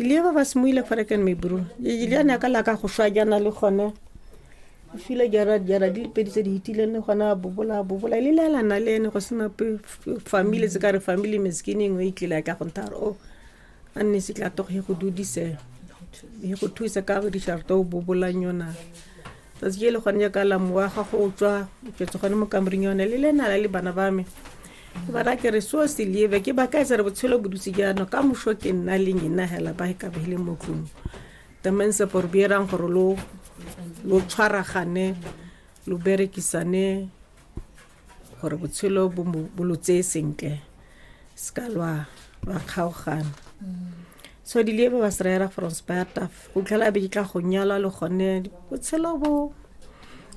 Ilia ba ba semoile fa re kene me bro. Ilia ne ka la ka go shwa jana le gone. O file jara jara di pedi tse di hitile ne gona bobola bobola ile la la na le ene go sena pe family tse ka re family meskini ngwe e tlile ka go ntara o a nne se tla togo go dudise e go thusa ka go di sharto bobola nyona. tsatsi je le gone jaaka la mowa ga go tswa ketse gone mo kamoreng yone le lena la le bana ba me ke ba rake re so se lieve ke ba ka etsa re botshelo bodutse jaano ka moso ke nna le nyena hela ba ka ba ile mo tlung tamense por bierang gore lo lo tshwaragane lo berekisane gore botshelo bo lo tseye sentle se ka lwa lwa kgaogana so di lebe ba seraera from spartaf o tlhela be di tla go nyalwa le gone botshelo bo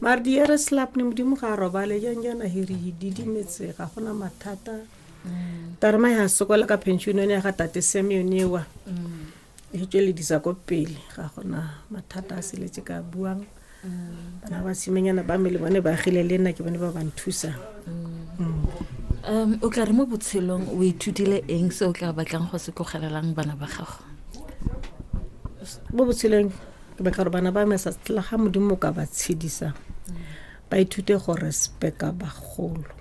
mare di ere slap ne modimo ga a robale jang jana hiri didimetse ga gona mathata mm. tarema ya sokola ka pension yone ya ga tate same yone ewa mm. e tsweledisa ko pele ga gona mathata a seletse ka buang mm. bana ba simenyana ba me le bone ba agile le nna ke bone ba ba nthusa mm. mm. um o tla re mo botshelong o ithutile eng se o tla batlang go se tlogelelang bana ba gago mo botshelong ke batla gore bana ba me sa tla ga modimo ka ba tshedisa ba ithute go respecta bagolo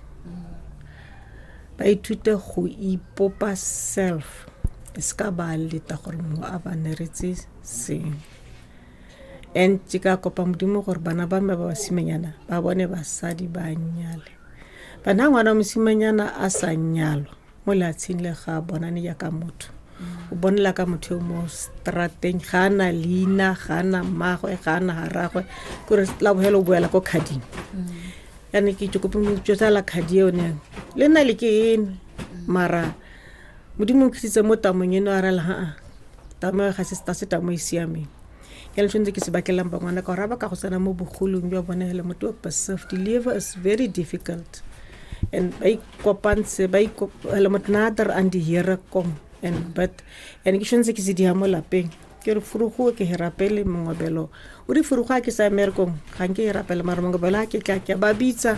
ba ithute go ipopa self e se ka ba leta gore mongwe a ba neretse sengwe and ke ka kopa modimo gore bana ba me ba basimanyana ba bone basadi ba nyale bana ngwana mosimanyana a sa nyalwa mo leatsheng le ga bonane ya ka motho o bonela ka motho yo mo strateng ga na leina ga na mmagwe ga na ga ragwe kore la bogela o boela ko khading yane ke kope motso tsa la khadi yone le nna le ke eno mara modimo o kgisitse mo tamong eno a rela haa tamo ga se se tamo e siameng jalo tshwanetse ke se batlelang bangwana ka gore ba ka go tsena mo bogolong jwa bone fela motho wa passive deliver is very difficult and ba ikopantshe ba ikopela motho nader and here kom and but and ke tshwanetse ke se diya mo lapeng ke re furugo ke he rapele mongobelo o di furugo a ke sa emerekong ga nke e rapele mara mongobelo a ke tla ke ba bitsa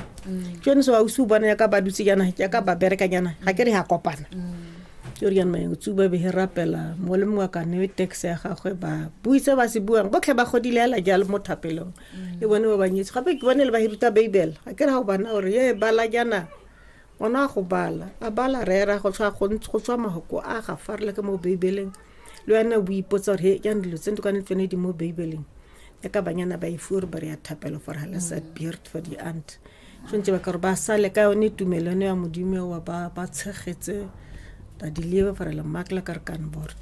ke yone se wa o se o bona yaka ba dutse jana yaka ba berekanyana ga ke re ya kopana mm. ke o riana o tsuba be he rapela mo le mongwe ka newe tax ya gagwe ba buitse ba se buang botlhe ba godile ala jalo mo thapelong le bone ba banyetse gape ke bone le ba hiruta bible a ke ra go bana gore ye bala jana ona go bala a bala rera go tswa go go tswa mahoko a ga farela ke mo bibeleng le wena o ipotsa gore he jang dilo tse ntokane tsone di mo bibeleng ya ka banyana ba e fuwe gore ba re ya thapelo for halasa beard for the aunt tshwanetse ba ka gore ba sale ka yone tumelano ya modimo eo ba ba tshegetse badiliwe gore lemakla ka re kanbord